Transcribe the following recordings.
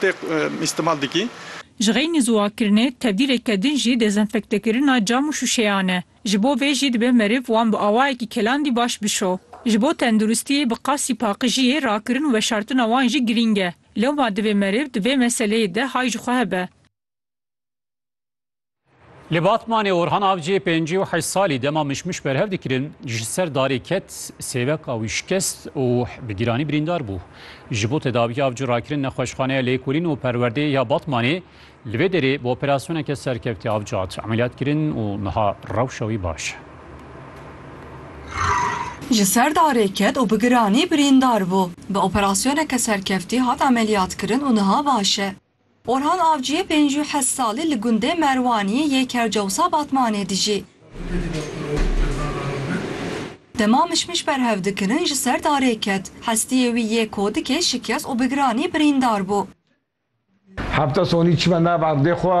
tê îstimal dikî. Ji xeynî ziwakirinê, tevdîreke din jî dezenfektekirina cam û şûşeyan e. Ji bo vê jî dibe meriv wan bi awayekî kelandî baş bişo. Ji bo tenduristiyê bi qasî paqijiyê rakirin û veşartina wan jî girîng e. Lewma divê meriv di vê meseleyê de hay ji xwe hebe. Li Batmanê Orhan Avciyê pêncî û heşt salî dema mişmiş berhev dikirin ji ser darê ket, sêveka wî şikest û bi giranî birîndar bû. Ji bo tedaviya avcî rakirin nexweşxaneya Lêkolîn û Perwerdeyê ya Batmanê li vê derê bi operasyoneke serkevtî avcî hat emeliyatkirin û niha rewşa wî baş e. Ji ser darê ket û bi giranî birîndar bû. Bi operasyoneke serkevtî hat emeliyatkirin û niha baş e. Orhan Avciyê pênc û heşt salî li gundê Merwaniyê yê Kercewsa Batmanê dijî. Dema mişmiş berhev dikirin ji ser darê ket. Hestiyê wî yê kodikê şikest û bi giranî birîndar bû. Hevta sonî çime nav erdê xwe.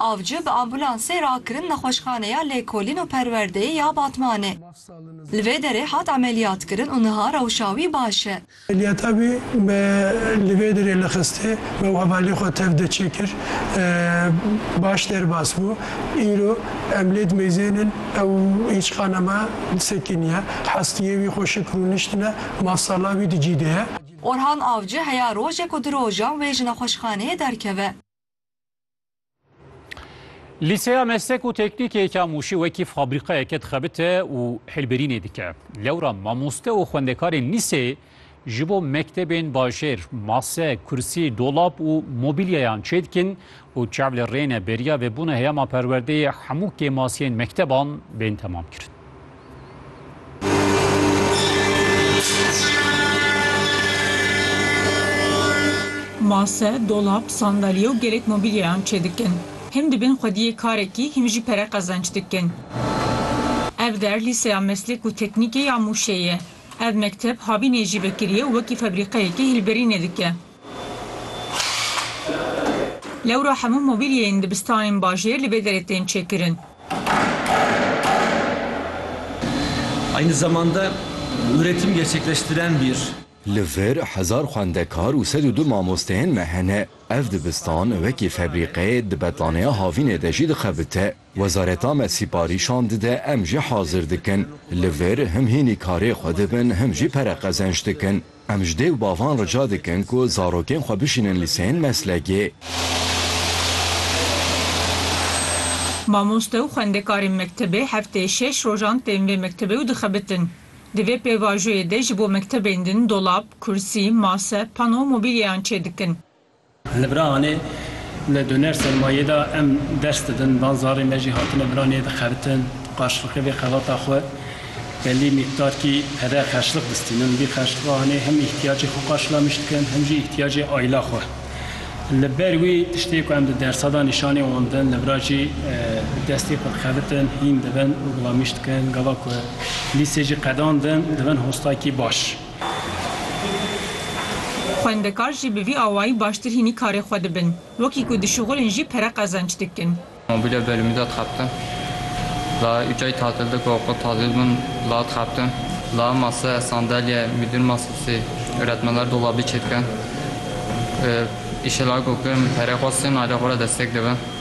Avcı bi ambulansê rakirin Nexweşxaneya Lêkolîn û Perwerdeyê ya Batmanê. Li vê derê hat emeliyatkirin û niha rewşa wî baş e. Emeliyata wî me li vê derê lixistê, me û hevalê xwe tev de çêkir. Baş derbas bû. Îro em lê dimeyzên in. Ew hîç qane me sekiniye. Hestiyê wî xweşik rûniştine. Mafsala wî di cî de ye. Orhan Avcı heya rojek û di rojan wê ji nexweşxaneyê derkeve. Lîseya meslek û teknîkê Kamûşî wekî fabrîqayeke dixebite û hilberînê dike. Lewra mamoste û xwendekarên lîseyê ji bo mektebên bajêr mase, kursî, dolap û mobîlyayan çêdikin û çav li rê ne beriya vebûna heyama perwerdeyê hemû kêmasiyên mekteban bên temamkirin. Mase, dolap, sandalye û gelek mobîlyayan çêdikin. Him dibin xwediyê karekî, him jî pere qezenç dikin. Ev der Lîseya Meslek û Teknîkê ya Mûşê ye. Ev mekteb havînê jî vekiriye û wekî febrîqeyekê hilberînê dike. Lewra hemû mobîlyeyên dibistanên bajêr li vê derê tên çêkirin. Aynı zamanda üretim gerçekleştiren bir. Li vir hezar xwendekar û sed û du mamosteyên me hene. Ev dibistan wekî febrîqeyê di betlaneya havînê de jî dixebite. Wezareta me sîparîşan dide em jî hazir dikin li vir him hînî karê xwe dibin him jî pere qezenç dikin. Em ji dê û bavan rica dikin ku zarokên xwe bişînin lîseyên meslekê. Mamoste û xwendekarên mektebê hefteyê şeş rojan tên vê mektebê û dixebitin. Di vê pêvajoyê de ji bo mektebên din dolap, kursî, mase, pano û mobîlyeyan çêdikin. Li Birahanê li doner sermayê de em ders didin, van zarê me jî hatine Biranê dixebitin, qarşilqê vê xebata xwe belî mîqdarkî pere xerçliq distînin. Vî xerçliqa hanê hem îhtiyacê xwe qarşilamiş dikin hem jî îhtiyacê aîla xwe. Li ber wî tiştê ku em di dersa de nîşanê wan didin, li vir jî bi destê xwe dixebitin, hîn dibin û gulamîş dikin. Gava ku lîsê jî qedandin, dibin hostakî baş. Xwendekar jî bi vî awayî baştir hînî karê xwe dibin. Wekî ku dişuxulin jî pere qezenç dikin. Mobîlya bêrîmî de dixebtin. La ucayî tatil de ku oxûr tazî dibin la dixebtin. La mase, sandelye, mîdûr masesî, öretmenler dolabî çêdikin. Îşê la ku kirin bi perê xwe sê nalê xwe re destek dibin.